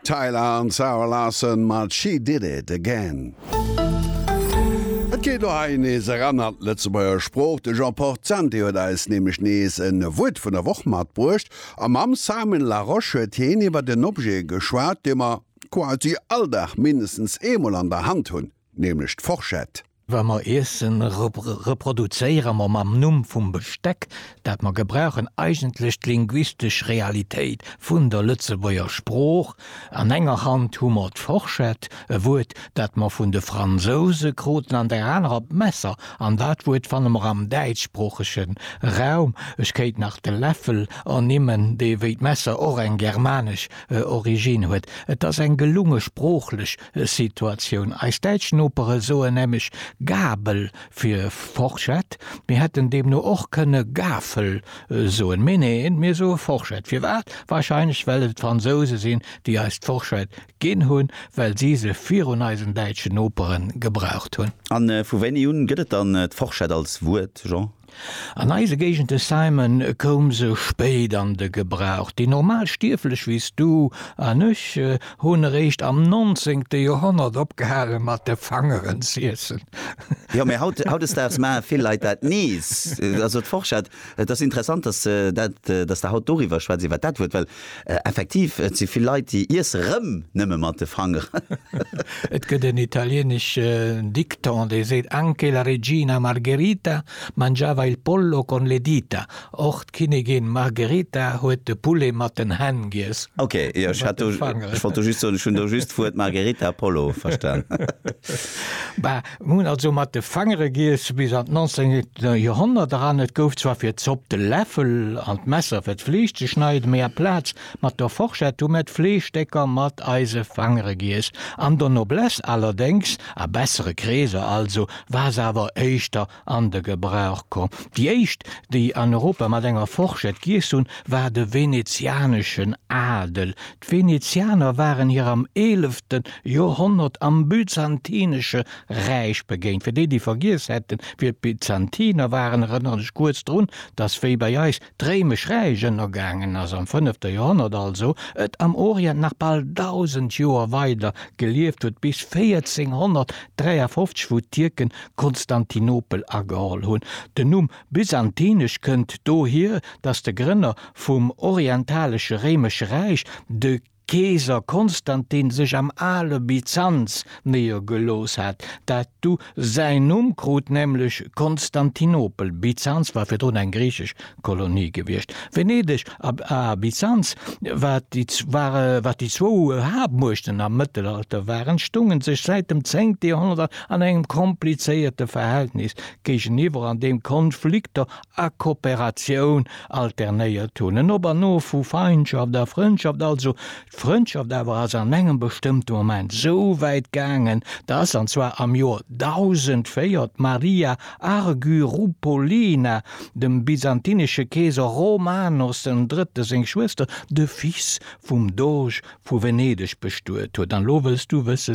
Tyla an Zara Larsson mat She Did It Again. Et geet elo hei nees eran an d'Lëtzebuerger Sprooch. De Jean Portanti huet eis nämlech nees e Wuert vun der Woch matbruecht. A mam Simon Larosche huet hien iwwert en Objet geschwat, dee mer quasi all Dag mindestens eemol an der Hand hunn, nämlech d'Forschett. Wa mer Iesse reproduzéiere mer mam Numm vum Besteck, dat mer gebrauchen, eigentlech d'linguistesch Realitéit vun der Lëtzebuerger Sprooch. An enger Hand hu mer d'Forschett, e Wuert, dat mer vun de Fransouse kruten, an der anerer d'Messer. An dat Wuert fanne mer am däitschsproochege Raum. Ech kéint nach de Läffel ernimmen, dee wéi d'Messer och eng germanesch Originn huet. Et ass eng gelunge, sproochlech Situatioun. Eis däitsch Nopere soen nämlech Gabel fir Forschett, mir hätten deemno och kënne Gafel soen, mee neen, mir soe Forschett. Firwat? Warscheinlech well et d'Fransouse sinn, déi eis d'Forschett ginn hunn, well si se virun eisen däitschen Nopere gebraucht hunn. A vu wéini un gëtt et dann d'Forschett als Wuert, Jean? An eise Géigende Simon koum se spéit an de Gebrauch. Déi normal Stierflech wéi s du an ech hunn eréischt am nonzéngte Joerhonnert opgehale mat de Fangeren z'iessen. Jo, mä haut, hautdesdaags maache vill Leit dat nees. Also d'Forschert, et ass interessant, dass, dass der haut doriwwer schwätz, iwwer dat Wuert, well Effektiv, et si vill Leit, déi iesse rëm nëmme mat de Fanger. Et gëtt en italieneschen Dikton, dee seet, Anche la regina Margherita mangiava il pollo con le dita, Och d'Kinnigin Margherita huet de Poulet mat den Hänn giess. Ok, jo, ech hat do, ech wollt do just soen, ech hunn do just d'Wuert Margherita a Pollo verstan. Bah. Mir hunn also mat de Fangere giess bis an d'nanzéngte Joerhonnert eran. Et gouf zwar fir d'Zopp de Läffel an d'Messer fir d'Fleesch ze schneiden, mee aplaz mat der Forschett hu mir d'Fleeschstécker mat eise Fangere giess. An der Noblesse allerdéngs, a bessere Kreeser also, war se awer éischter an de Gebrauch komm. Déi éischt, déi an Europa mat enger Forschett giess hunn, war de venezianeschen Adel. D'Venezianer waren hir am eelefte Joerhonnert am Byzantinesche Räich begéint. Fir déi, déi vergiess hätten, wie d'Byzantiner waren, erënneren ech kuerz drun, dass, wéi bei eis d'Réimesch Räich ënnergaangen ass, am fënnefte Joerhonnert also, et am Orient nach bal dausend Joer weider gelieft huet, bis 1453, wou d'Tierken Konstantinopel ageholl hunn. Den Numm Byzantinesch kënnt dohier, datt de Grënner vum orientalesche Réimesche Räich, de Keeser Konstantin, sech am ale Byzanz néiergelooss hat, dat du säin Numm krut, nämlech Konstantinopel. Byzanz war virdrun eng griichesch Kolonie gewiescht. Venedeg a Byzanz, wat déi zwou Haaptmuechten am Mëttelalter waren, stounge sech säit dem zéngte Joerhonnert an engem komplizéierte Verhältnis géigeniwwer an deem Konflikter a Kooperatioun alternéiert hunn, en Op an Of vu Feindschaft a Frëndschaft, also d'Frëndschaft awer ass an engem bestëmmte Moment esou wäit gaangen, dass, an zwar am Joer 1004, d'Maria Argyroupolina dem byzantinesche Keeser Romanos den Drëtte seng Schwëster, de Fils vum Doge vu Venedeg, bestuet huet. An elo wëlls du wësse,